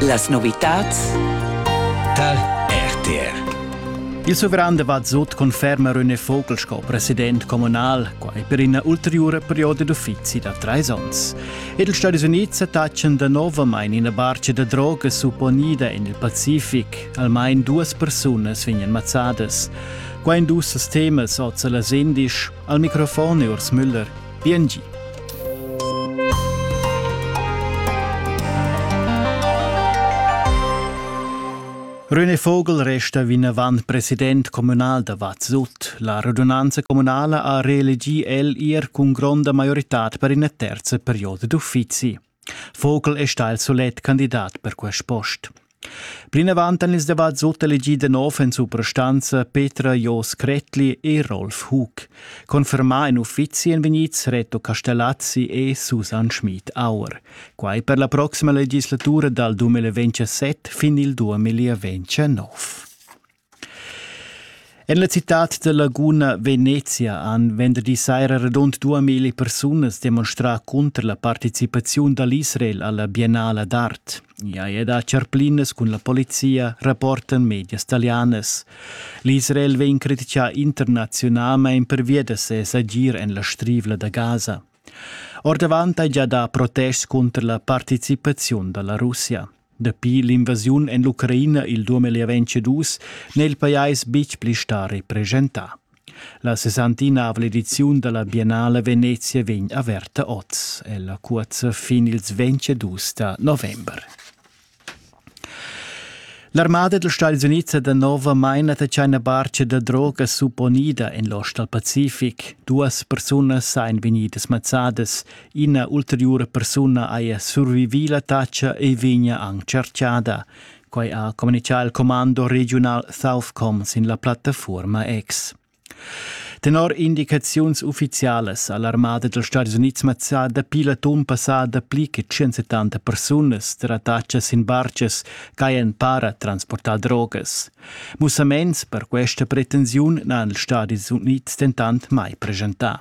Las novitads tar RTR. Il suveran de Vazzut conferma René Vogel sco president communal, quai per ina ulteriura perioda d'uffizi da treis onns. Ed ils Stati Uniti taccian da novamain ina barca da droga supponida en il Pacific. Almain duas persunas vegnan mazzadas. Qua in dus temas oz las indisch. Al microfon è Urs Müller. Piengi. René Vogel resta vinavant president communal da Vazzut. La radunanza communala ha reelegì el ir cun gronda maioritad per ina terza perioda d'uffizi. Vogel è stà il solet candidat per quest post. Plinavant han ils debats sutelegì da nov en suprastanza Petra Jos Kretli e Rolf Hug. Confermà en uffizi èn vegnids Reto Castellazzi e Susanne Schmid-Auer. Quai per la proxima legislatura dal 2027 fin il 2029. En la citad da Laguna, Venezia, han venderdi saira radund duamilli persunas demonstrà cunter la participaziun da l'Israel alla Biennala d'art. Ja è da charplinas cun la polizia, rapportan medias talianas. L'Israel vegn criticà internaziunalmain pervia da ses agir en la Strivla da Gaza. Ordavant hai gia dà protests cunter la participaziun da la Russia. Dapi l'invasiun en l'Ucraina il 2022 n'è il pajais betg pli stà represchentà. La sessantinavla ediziun da la Biennale Venezia vegn averta oz. Ella cuozza fin ils 22 da november. L'armada dals Stati Unids è danovamain la tschaina barcha da droga supponida en l'ost dal Pacific. Duas persunas èn vegnidas mazzadas, ina ulteriura persuna haja survivì l'attacca e vegnia anc chartschada. Quai ha communitgà il commando regiunal Southcom sin la plattafuorma X. Tenor indicaziuns uffizialas ha l'armada dals Stadis Unids mazzà dapi l'atun passà dapli che 170 persunas tar attacas sin bartgas ch'hajan para transportà drogas. Mussaments per questa pretensiun n'han ils Stadis Unids dentant mai presentà.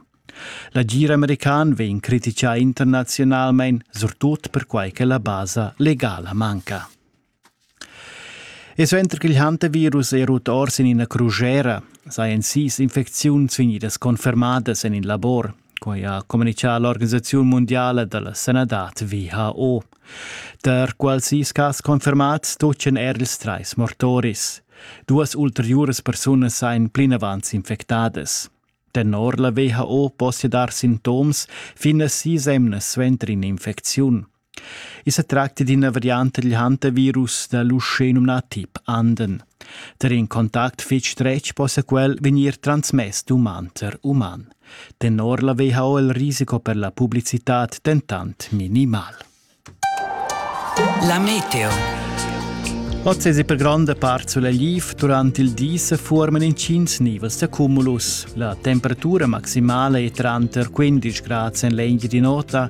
L'agir american vegn criticà internaziunalmain, surtut perquai che la basa legala manca. E suenter ch'il hantavirus è rut or sin ina crugera, sajan sis infecziuns vegnidas confermadas en in labor. Quai ha communitgà l'organisaziun mundiala da la sanadad WHO. Tar quals sis cas confermads tutgan er ils trais mortoris. Duas ulteriuras persunas sajan plinavant infectadas. Tenor la WHO possia dar sintoms fin a sis emnas suenter in'infecziun. I sa tracta d'ina varianta dil hantavirus da l'uschè numnà tip Anden. Der in contact fetg stretg possa quel vegnir transmess d'uman ter uman. Tenor la WHO il risiko per la publicitad dentant minimal. La meteo. Oz è per gronda part sulegl durante il di se forman incins nivels da cumulus. La temperatura maximale è tranter 15 gradi en l'engio di nota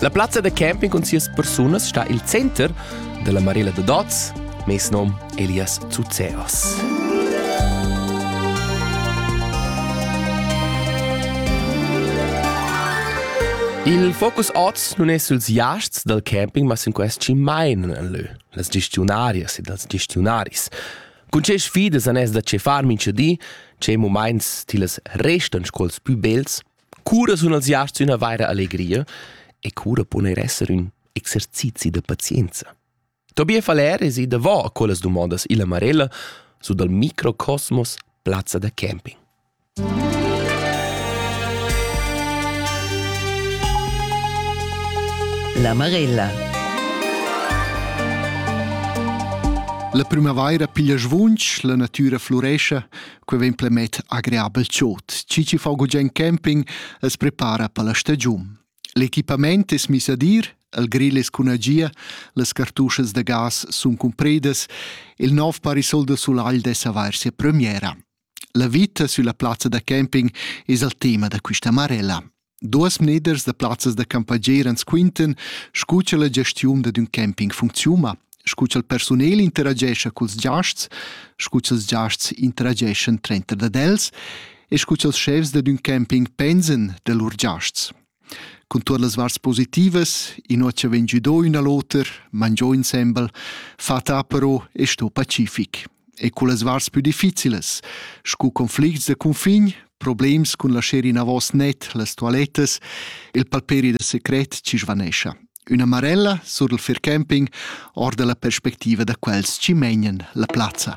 La plazza da camping cun sias persunas sta il center dalla Marella da Dots, mes nom Elias Zuzeos. Il focus oz nun è suls iasts dal camping, ma sin quest chi mainan en lö, las gestionarias ed els gestionaris. Cun che sfidas anès da che far mincha di, che mumaints tillas restan sco'ls pü bels, Cura sun els giasts üna vaira allegria e cura pon eir esser ün exercizi da pazienza. Tobias Valer es i davò a quellas dumondas illa Marella su dal Microcosmos Plazza da camping. La Marella La primavaira piglia svunch, la natüra flurescha, Quei vegn plemet agreabel chod. Cici fa gugent camping e se prepara per la stagiun. L'equipament es mis ad ir, il grill es cun agia, las cartuschas da gas sun cumpridas, il nov parasol da sulagl dess avair sia premiera. La vita sulla plazza da camping es al tema da quista marella. Duas mneders da plazzas da campagner ans quintan scu cha la gestiun dad ün camping funcziuna, scu cha'l persunel interagescha culs giasts, scu cha'ls giasts interageschan trenter dad els e scu cha'ls schefs dad ün camping pensan da lur giasts. Cun tuot las varts positivas, inua cha vegn giudo ün a l'oter, mangiò insembel, fa ta però e sto pacific. e cullas varts pü difficilas, scu conflicts de cunfin, problems cun la sceri navos net, las toilettas, il palperi de secret ci svanescia. Una marella sur il fair camping or della perspectiva da quels ci megnan la plazza.